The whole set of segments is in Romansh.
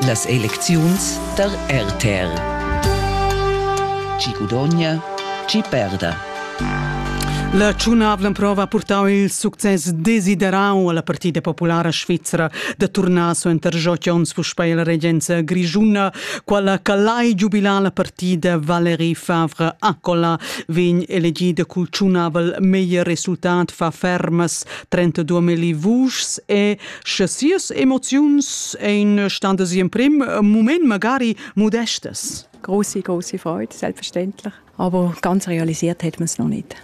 Las elecziuns tar RTR. Chi gudogna, chi perda. La tschunavla prova ha purtau il success desiderau alla Partida Populara Svizra da turnar suenter Jot Jons puspei alla regenza grischuna. Quella calai giubilar la partida Valérie Favre Accola vegn elegida cul tschunavel meglier resultat fa fermas 32 vuschs e Sche sias emoziuns ein standas emprim mument magari modestas. Große, große Freude, selbstverständlich. Aber ganz realisiert hat man es noch nicht.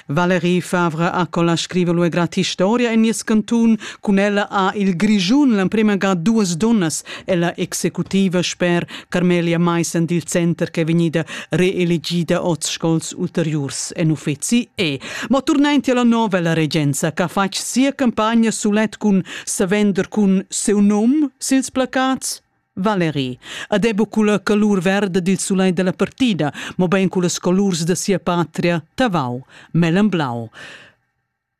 Valerie Favre Accola scrive lui grati storia en nies cantun, cun ella ha il Grischun l'emprema ga duas donnas ella executiva sper Carmelia Maissen dil center ch'è vegnida reelegida oz scols ulteriurs en uffeci e. Ma turnenti alla novella regenza che ha fatg sia campagna sulet cun savender cun seu num sils placats. Valeri. Ad ebo culla calur verda dil sulai della partida, mo ben culla scolurs da sia patria Tavau, Mellan Blau.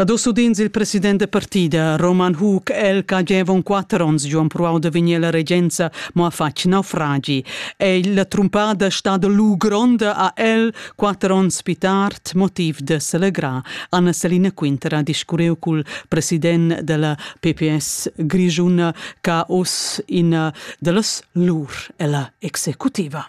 Ad usudins il president da partida Roman Hug el che avevon quatter onns giu empruau da vegnir alla regenza, mo ha fatg naufragi. Ei la trumpada stada lu gronda ha el quatter onns pli tard motiv de selegrar. Anna Selina Quinter ha discurreu cul president della PPS grischuna che ha uss ina dallas lur ella executiva.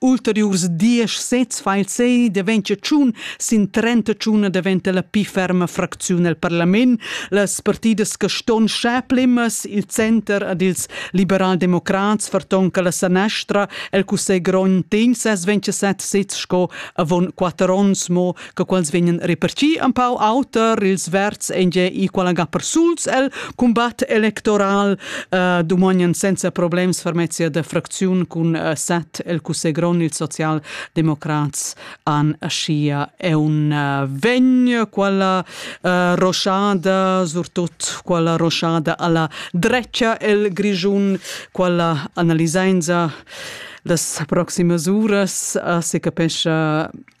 ulteriurs diesch sezs fa il sei daventia tschun sin trenta tschuna daventa la pli ferma fracziun el parlament. Las partidas che ston scheplimas il center ad ils liberaldemocrats vertonca la sanestra el cussegl grond tegn ses 27 sezs sco avon quatter onns mo che quels vegnan repartì empau auter ils verds ein gie equal ga persuls el combat electoral uh, dumognan senza problems fermezia de fracziun cun uh, set el cussegron il socialdemocrats an schia è un uh, vegn quella uh, roschada surtut quella roschada alla drecia el grigiun quella analisenza das proximas uras uh, se capescha